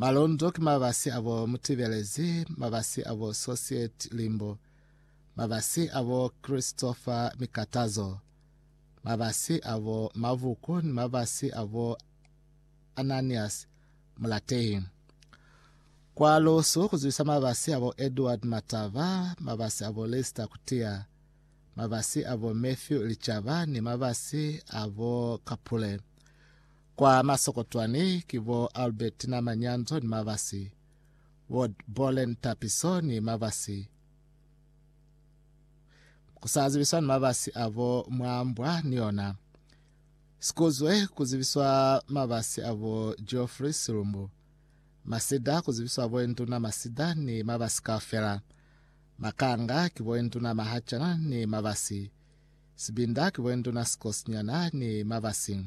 Malondo ki mabasi a bo Mutibelezi, mabasi a bo Sosiet Limbo, mabasi a bo Christopher Mikatazo, mabasi a bo Mavuku ni mabasi a bo Ananias Mulatehi. Kwa Lusu ku zwisa mabasi a bo Edward Matava, mabasi a bo Lister Kutia, mabasi a bo Matthew Lichaba ni mabasi a bo Kapule. Kwa masokotwani ki bo Albertina Manyanzo ni Mavasi, bo Bolen Tapiso ni Mavasi. Ku sa zibiswa ni mavasi a bo mwa mbwa ni yona. Sikuzwe ku zibiswa mavasi a bo Geoffrey Silumbu. Masida ku zibiswa bo Induna Masida ni mavasi kaufela. Makanga ki bo Induna Mahachana ni Mavasi. Sibinda ki boenduna sikosinyana ni mabasi.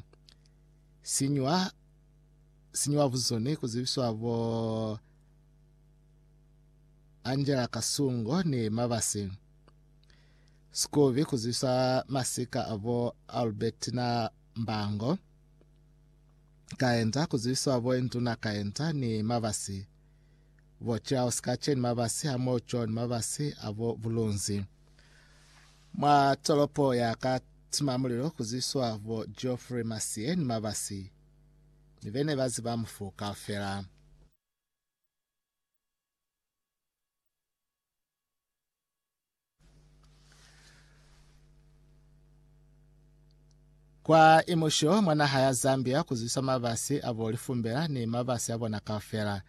Sinywa sinywa buzuni kuzibiswa bo Angela Kasungo ni mabasi. Sikubi kuzibiswa masika abo Albertina Mbango. Kaenta kuzibiswa boenduna Kaenta ni mabasi. Bo Charles Kache ni mabasi hamoho John Mabasi abo Bulunzi. Mwa tolopo ya ka tima mulilo kuziswa bo Geoffrey Masie ni Mabasi ni bene ba ziba mufu kaufela. Kwa imusho mwa naha ya Zambia ku zwiswa mabasi a bo lifumbela ni mabasi a bona kaufela.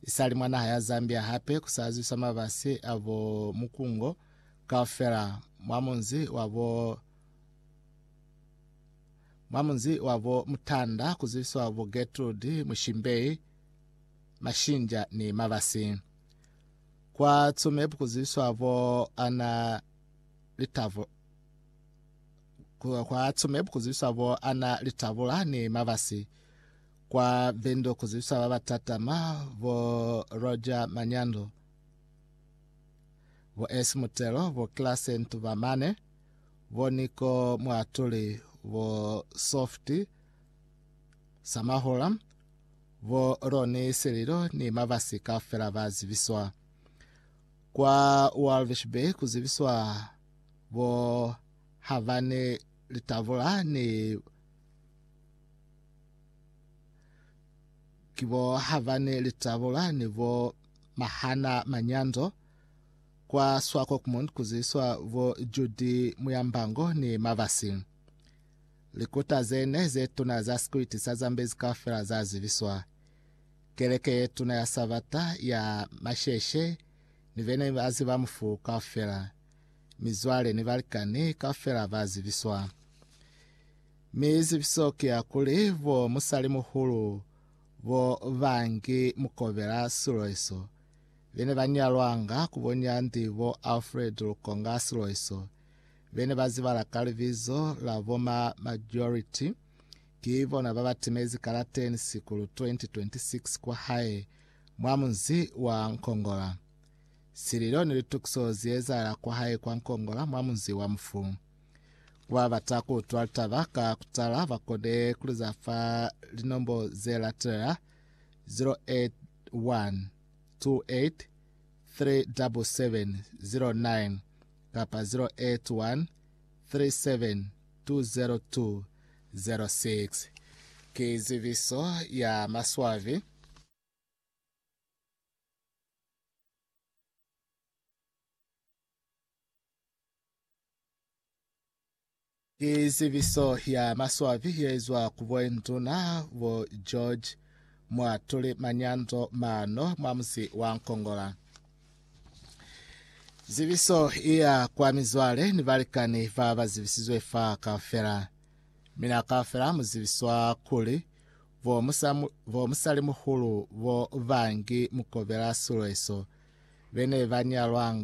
Isali mwa naha ya Zambia hape ku sa zwiswa mabasi a bo Mukungo kaufela mwa munzi wa bo mwa munzi wa bo Mutanda ku zwiswa bo Getrude, Mushimbei, Mashinja ni Mabasi. Kwa Tsumeb ku zwiswa bo Ana Litavo Kwa Tsumeb ku zibiswa bo Anna Litabula ni Mabasi. Kwa Vendo ku zibiswa ba ba tatama bo Roger Manyando, bo S Mutelo, bo Classe Ntubamane, bo Niko Mwatuli, bo Soft Samahula, bo Roni Sililo ni Mabasi kaufela ba zibiswa. Kwa Walvis Bay ku zibiswa bo ha ba ne litavula ni ki bo ha ba ne litavula ni bo mahana manyanzo kwa Swakopmund kuziswa bo Judi Muyambango ni Mavasi. Likuta ze ne ze tuna za sikwiti sa Zambezi kaufela za zibiswa. Keleke ye tuna ya Sabata ya masheshe ni be ne ba ziba mufu kaufela. mizwale ni balikani kaufela ba zibiswa. Mi zibiso ki ya kuli bo musalimuhulu bo ba ngi mukobela siloiso be ne ba nyalwanga ku bo Nyandi bo Alfred Lukonga Siloiso be ne ba zibala ka libizo la bo ma Majority ki bona ba ba timezi kalateni Sikulu 2026 kwa hae mwa munzi wa Nkongola. Sililo ni litukiso zi ezahala kwa hae kwa Nkongola mwa munzi wa mufu. Ku ba bata ku utwa litaba ka ku tala ba kone ku li za fa linombo ze latelela, 081 28 37709 kapa 081 37 20206. Ki zibiso ya maswabi. Ki zibiso ya maswabi ye izwa ku boinduna bo George mwa tuli manyando mano mwa musi wa Nkongola. Zibiso iya kwa mizwale ni balikani ba ba zibisizwe fa kaufela. Mina kaufela mu zibiswa kuli Bo musa, bo musalimuhulu bo bangi mukobela silo eso, bene ba nyalwanga.